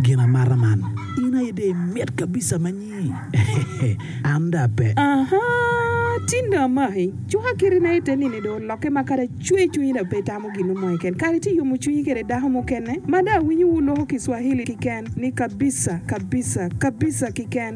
Gin amata man. In aye dong imit kabisa ma nyi. An dong ape. Ahaa, tin dong amaki. Cuka kiti na ite nini dong olokke ma kadi acwe cwinyi dong pe itamo gin mo keken. Kare ci iyomo cwinyi kede dako mukene ma dong awinyo wu loko kiswahili kiken ni kabisa, kabisa, kabisa kiken.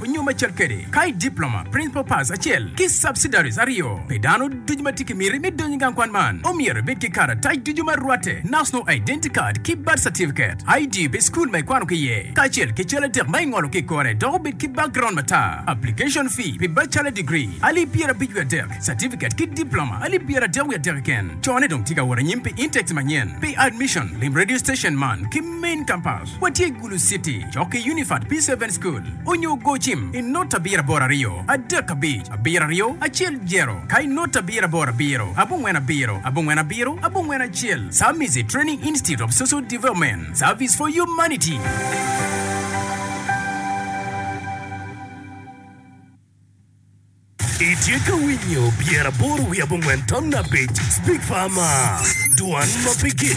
Onyo me cal kede, ka i Diploma, Principal Pass acel ki Subsidiaries aryo, pe dano ducu ma tye ki miti me donyo i gang kwan man omyero ebed ki karatac ducu ma rwatte, National Identity Card ki Birth Certificate, ID pi school ma ikwano ki iye, kacel ki cal adek ma ingolo ki i kore dok obed ki background matar. Application Fee pi Bachelor Degree, alip pyerabic wiye adek, Certificate ki Diploma, alip pyeradek wiye adek keken. Cone dong tye ka wot anyim pi intakes manyen pi admission. Lim radio station man ki Main Campus. Watye i Gulu City, cok ki Unified Peace Haven School, onyo go cim i not abiro aboro aryo, adek abic, abiro aryo, acel zero, ka i not abiro aboro abiro, abongwen abiro, abongwen abiro, abongwen acel, Samizi Training Institute of Social Development, Service for Humanity. Itye ka winyo Pyera Aboro Wiye Abongwen Tamna Abic Big Pharma, Dwan ma Pigik.